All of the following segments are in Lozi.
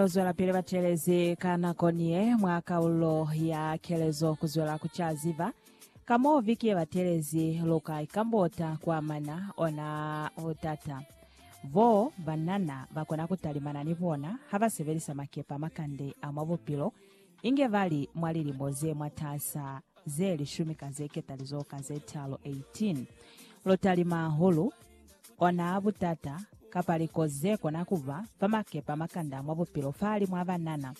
Lozwelapili batelezi ka nako niye mwa kaululo ya kelezo kuzwela kucaziba ka mo viki yebatelezi luka ikambota kuamana ona butata bo banana bakona kutalimana ni bona habasebelisa makepe amakande a mwa bupilo Inge ba li mwa lilimo ze mwataasa ze lishumi ka ze ketalizo ka ze talo, 18, lotalima hahulu, ona butata, kapa likozi ze kona ku ba, fa makepe a makanda mwa bupilo fahalimu a banana.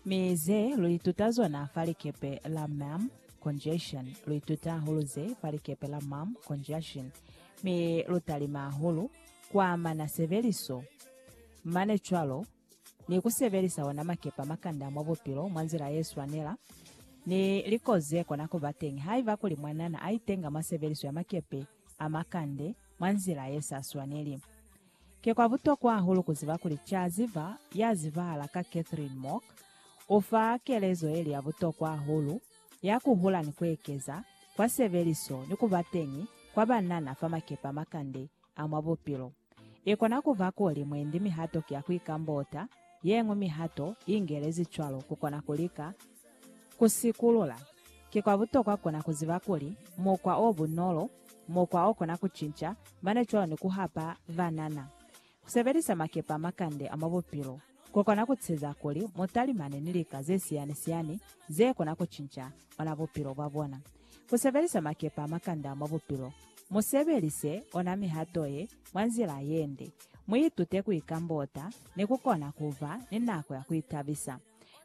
Mi ze lu ituta zona fa likepe la Ma'am Conjunction, lu ituta hahulu ze fa likepe la Ma'am Conjunction, mi lu talima hahulu ku amana sebeliso, mane cwalo. ni ku sebelisa ona makepa makanda mwa bupilo mwa nzila ye swanela, ni likozi ze kona ku ba teñi haiba kuli mwanana a itenga mwa sebeliso ya makepe a makande mwa nzila ye sa swaneli. Ki kwa butokwa hahulu ku ziba kuli ca ziba ya zibahala ka Catherine Mock u fa kelezo ye li ya butokwa hahulu ya ku hula ni ku ekeza kwa sebeliso ni ku ba teñi kwa banana fa makepe a makande a mwa bupilo. I kona ku ba kuli mwendi mihato ki ya ku ikambota, ye ñwi mihato i ingelezi cwalo ku kona ku lika ku sikulula. Ki kwa butokwa ku kona ku ziba kuli mukwa o bunolo, mukwa o kona ku cinca, mane cwalo ni ku hapa banana ku sebelisa makepe a makande a mwa bupilo. ku kona ku tiiseza kuli mu talimane ni lika ze siyani-siyani ze kona ku cinca ona bupilo bwa bona. Ku sebelisa makepe a makanda mwa bupilo. Mu sebelise ona mihato ye mwa nzila ye nde. Mu itute ku ikambota ni ku kona ku ba ni nako ya ku itabisa.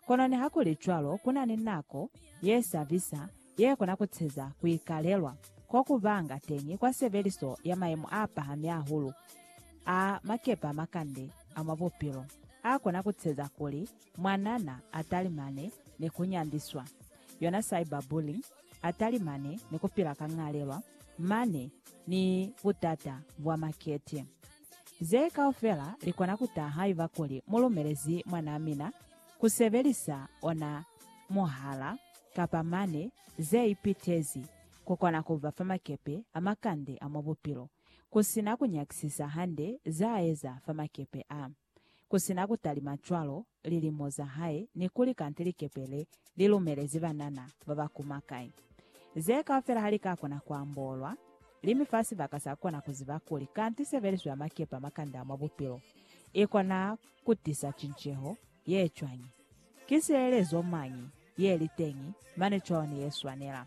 Kono nihakulicwalo ku na ni nako ye sa bisa yekona kuteza kuikalelwa kokubanga teñi kwa sebeliso ya mayemo aapahami ahulu a makepe a makande a mwa bupilo akona kuteza kuli mwanana atalimane ni kunyandiswa, yona cyberbullying, atalimane ni kupila ka ñalelwa mane ni butata bwa makete. Ze kaufela likona kutaha haiba kuli mulumelezi mwanaa mina ku sebelisa ona muhala kapa mane ze ipitezi ku kona ku ba fa makepe a makande a mwa bupilo, ku si na ku nyakisisa hande za eza fa makepe a, ku si na ku talima cwalo lilimo za hae ni kuli kante likepe le li lumelezi banana ba ba kuma kai. Ze kaufela ha li ka kona ku ambolwa, limi fa sibaka sa kona ku ziba kuli kante sebeliso ya makepe a makande a mwa bupilo i kona ku tisa cinceho ye cwañi? Ki sielezo mañi ye li teñi mane cwalo ni ye swanela?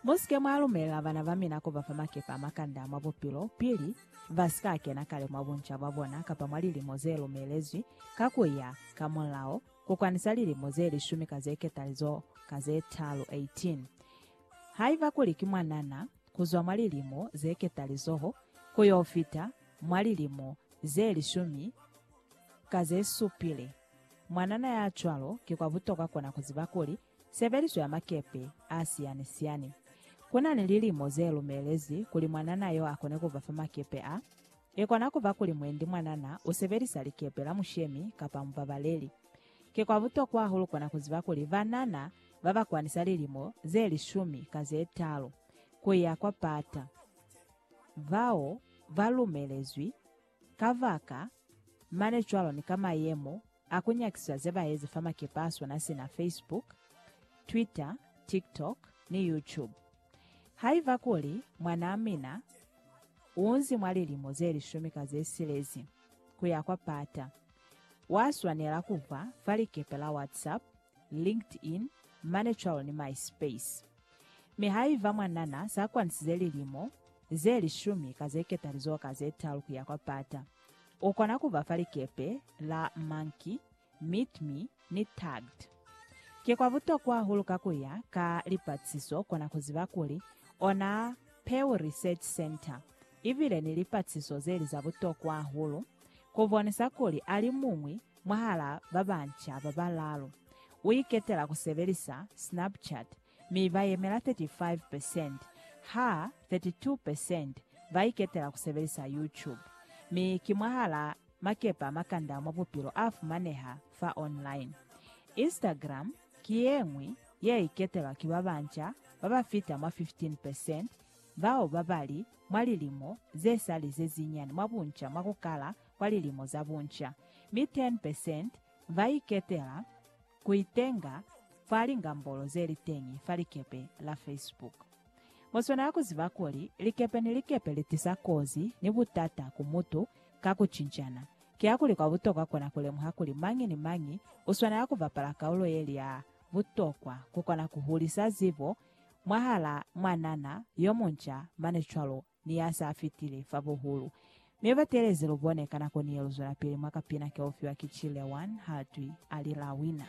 Mu si ke mwa lumelela bana ba mina ku ba fa makepe a makande a mwa bupilo pili ba si ka kena kale mwa bunca bwa bona kapa mwa lilimo ze lumelezwi ka ku ya ka mulao, ku kwanisa lilimo ze lishumi ka ze ketalizo ka ze talu, 18. Haiba kuli ki mwanana, ku zwa mwa lilimo ze ketalizoho ku y'o fita mwa lilimo ze lishumi ka ze supile. Mwanana ya cwalo ki kwa butokwa kona ku ziba kuli sebeliso ya makepe a siyani-siyani ku na ni lilimo ze lumelezi kuli mwanana y'o a kone ku ba fa makepe a. I kona ku ba kuli mwendi mwanana u sebelisa likepe la mushemi kapa mubabaleli. Ki kwa butokwa hahulu kona ku ziba kuli banana ba ba kwanisa lilimo ze lishumi ka ze talu ku ya kwa pata, bao ba lumelezwi ka baka mane cwalo ni ka mayemo a ku nyakisiswa ze ba ezi fa makepe a swana sina Facebook, Twitter, TikTok, ni YouTube. Haiba kuli mwanaa mina u nzi mwa lilimo ze lishumi ka ze silezi ku ya kwa pata, wa swanela ku ba fa likepe la WhatsApp, LinkedIn, ManyCal ni MySpace. Mi haiba mwanana sa kwanisize lilimo ze lishumi ka ze ketalizoho ka ze talu ku ya kwa pata, u kona ku ba fa likepe la Monkey, Meet Me, ni Tagged. Ki kwa butokwa hahulu ka ku ya ka lipatisiso kona ku ziba kuli ona Pew Research Center i bile ni lipatisiso ze li za butokwa hahulu ku bonisa kuli alimuñwi Mwahal'a ba banca ba balaalu, u iketela ku sebelisa Snapchat mi ba yemela 35 percent, ha 32 percent ba iketela ku sebelisa YouTube. Mi ki mwahal'a makepe a makanda mwa bupilo a fumaneha fa online. Instagram ki ye ñwi ye iketelwa ki ba banca ba ba fita mwa 15 percent bao ba ba li mwa lilimo ze sa li ze zinyani mwa bunca mwa ku kala kwa lilimo za bunca, mi 10 percent ba iketela ku itenga fa lingambolo ze li teñi fa likepe la Facebook. Mu swanela ku ziba kuli likepe ni likepe li tisa kozi ni butata ku mutu ka ku cincana. Kiakuli kwa butokwa kona ku lemuha kuli mañi ni mañi u swanela ku bapala kaulo ye li ya butokwa ku kona ku hulisa zibo mwahalaa mwanana yo munca mane cwalo ni ya sa fitile fa buhulu. Mi ba teelezi lu bone ka nako ni ye lu zwelapili mwa kapina ke u fiwa ki Chilewan Haltwi, a lila Wina.